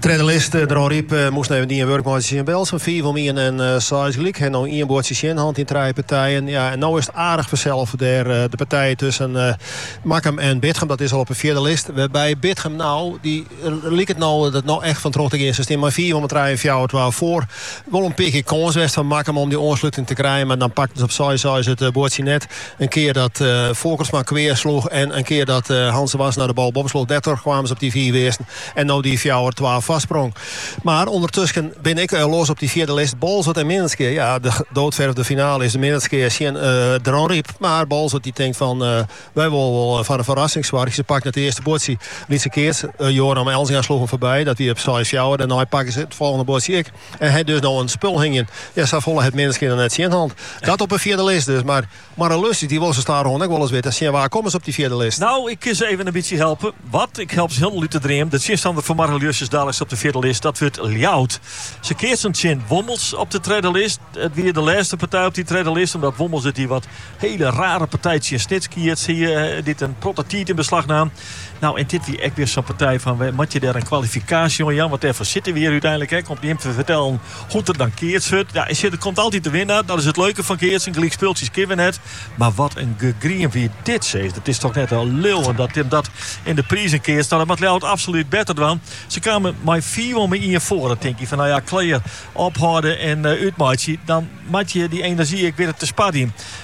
Tredde list Dronryp moast even dien wurk meitsje tsjin Belsum. Fiif om ien en seis gelyk. Ha no ien buordsje tsjin hân yn trije partijen. Ja, en no is it aardich ferselve dêr. De partij tusken Makkum en Bitgum, dat is al op de fjirde list. Wêrby Bitgum no, dy liket no der no echt fan troch te gean. Se stean mei fiif om 'e trije en fjouwer twa foar. Wol in pear kear kâns west fan Makkum om dy oansluting te krijen, mar dan pakten se op seis seis it buordsje net. In kear dat Folkertsma kwea sloech en in kear dat Hans Wassenaar de bal boppe sloech, dêrtroch kamen se op dy fiif earsten. En no dy fjouwer twa foarsprong. Mar ûndertusken bin ek eh, los op dy fjirde list, Boalsert en Minnertsgea. Ja, de doodverfde finale is dan Minnertsgea tsjin Dronryp. Mar Boalsert dy tinkt fan, wy wolle wol foar in ferrassing soargje. Se pakten it earste buordsje, lytse keats. Joram Elzinga sloech him foarby, dat wie op seis fjouwer. Dêrnei pakten se it folgjende buordsje ek. En ha dus no in spul hingjen. Ja, sa folle hat Minnertsgea noch net tsjin hân. Dat op in fjirde list dus, mar. Moarre-Ljussens, dy wolle se stadichoan ek wolris witte, tsjin wa komme se op dy fjirde list? No, ik kin se even in bytsje helpe. Wat? Ik help se hielendal út de dream. De tsjinstanner fan Moarre-Ljussens daliks op de fjirde list, dat wurdt Ljouwert. Se keatsen tsjin Wommels op de tredde list. It wie de lêste partij op dy tredde list, omdat Wommels út dy wat hele rare partij tsjin Snits keats hie, dy't in protte tiid yn beslach naam. No, en dit wie ek wer sa'n partij fan, moat je dêr in kwalifikaasje oan jaan, want dêrfoar sitte we hjir úteinlik ek, om jim te fertellen Hoe't der dan keatst wurdt? Ja, sjoch, der komt altyd de winnaar. Dat is it leuke fan keatsen. Gelykspultsjes kenne we net. Mar wat in gegriem wie dit sis. Dat is toch net te leauwen dat Tim dat yn de prizen keatst. No, dat moat Ljouwert absoluut better dwaan. Se kamen mei fiif om 'e ien foar. Dan tink je fan, no ja, klear, ophâlde en eh, útmeitsje. Dan moat je dy energie ek witte te sparjen.